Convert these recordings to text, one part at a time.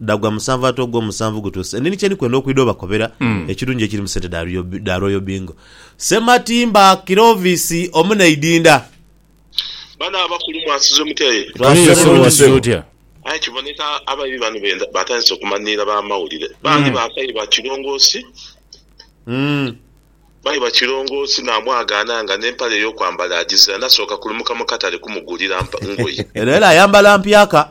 Dhagwa musanvu ate ogwo musanvu gutuuse. Nini kye ndi kwenda okwidha obakobera ekirungi ekiri mu sente dha Royal- dha Royal Bingo. Ssematimba Clovis omu n'eidinda. Bano abakulu mwasize mutya aye? Tuli Yesu Twasize wasize bulungi. otya? Aye kiboneka abaibi bano benda batandise okumanhiira bamawulire. Bandi bakaiba Kirongoosi, Mm. baiba Kirongoosi namwagaana nga n'empale ey'okwambala agizira nasooka kulumuka mu katale kumugulira mpa- ngoye. Eno era ayambala mpyaka.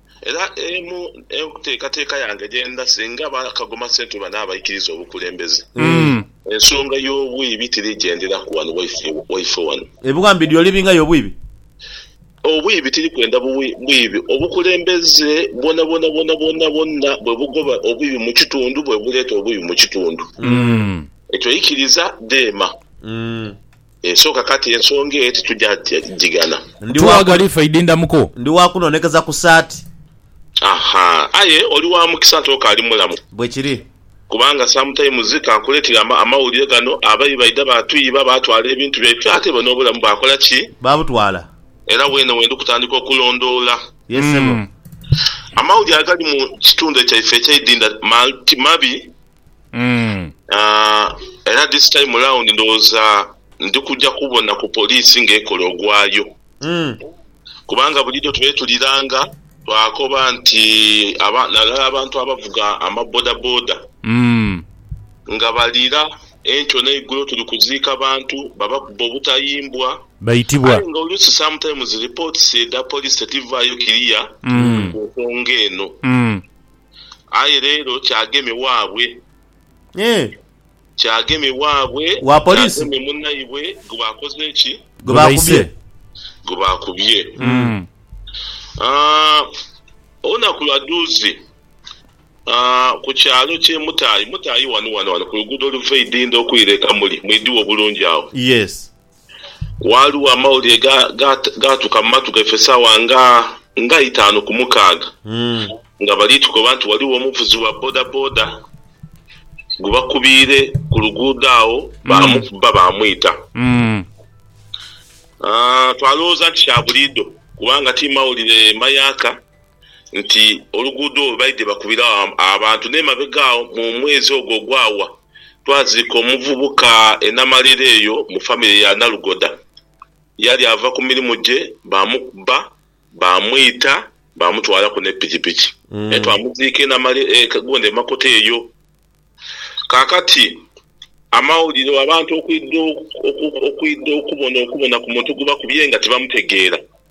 Era emu enteekateeka yange gye ndha singa ba Kagoma Central banaabaikiriza obukulembeze, ensonga y'obwibi tirigyenderaku wano waife waife wano. Ebiwambe dyo olibingayo obwibi? Obwibi tiri kwenda buwi bwibi. Obukulembeze bwonabwona bwonabwona bwonna bwe bugoba obwibi mu kitundu bwe buleeta obwibi mu kitundu. Ekyo ikiriza dheema. Esooka kati ensonga eyo titugya gighana. Ndi wa ku. Ndi wa kunoonekeza ku saati. Aha. Aye oli wa mukisa nti okaali mulamu. Bwe kiri. Kubanga sometimes ka nkuleetere amawulire gano, Abayi baidha baatuyiba, baatwala ebintu byaife, ate ibo n'obulamu baakola ki? Baabutwala. Era weene we ndi kutandika okulondoola. Ye ssebo. Amawulire agali mu kitundu kyaife eky'eidinda ti mabi. era this time round ndowooza ndi kujja kubona ku poliisi ng'ekola ogwayo kubanga bulijo twetuliranga twakoba nti naddala abantu abavuga amabodaboda nga balira enkyo n'eigulo tuli kuziika bantu babakuba obutayimbwa aye nga oluusi sometimes reports edha poliisi tidhivaayo clear ku nsonga eno. Aye leero kyageme waabwe. Eeh. Kyageme waabwe. Wa police. Kyageme munaibwe gwe bakoze ki? Gwe baise. Gwe bakubye. Aah, olunaku lwa duuzi ku kyalo kye Mutayi, Mutayi wano wano wano ku luguudo oluva e Idinda okwira e Kamuli, mwidhiwa obulungi agho. Yes. Ghaligho amawulire gaatuka mu matu gaife saawa nga itaanu ku mukaaga nga bali tukoba nti ghaligho omuvuzi wa bodaboda gwe bakubiire ku luguudo agho baamukuba baamwita. Twalowooza nti kya buliidho kubanga ti mawulire mayaaka. nti oluguudo olwo baidhye bakubiragho abantu n'emabega agho mu mwezi ogwo ogwawa, twaziika omuvubuka e Namalira eyo mu famire ya Nalugoda. Yali ava ku mirimu gye baamukuba baamwita baamutwalaku ne pikipiki naye twamuziika e Namalira e Kagonda e Makota eyo. Kaakati amawulire abantu okwidha okwidha okubona okubona ku muntu gwe bakubye nga tibamutegeera.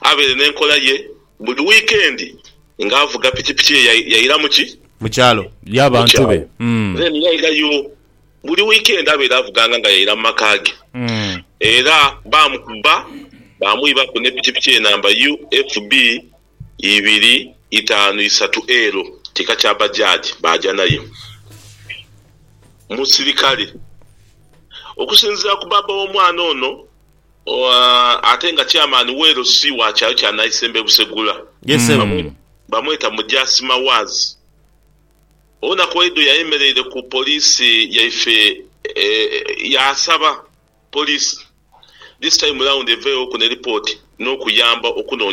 abeere n'enkola ye buli wiikendi ng'avuga pikipiki ye yaira mu ki? Mu kyalo. Y'abantu be. Then yairayo buli wiikendi abeere avuganga nga yaira mu maka ge. Era baamukuba baamwibaku ne pikipiki ye namba UFB ibiri itaanu isatu L, kika kya Bajaj, baaja nayo mu sirikale. Okusinziira ku baaba w'omwana ono, Ate nga Chairman we LC wa kyalo kya Naisembo e Busegula bamweta Mujaasi Mawaazi, olunaku olweidho yayemeleire ku poliisi yaife yaasaba poliisi this time round eveeghoku ne lipooti n'okuyamba okunoonia.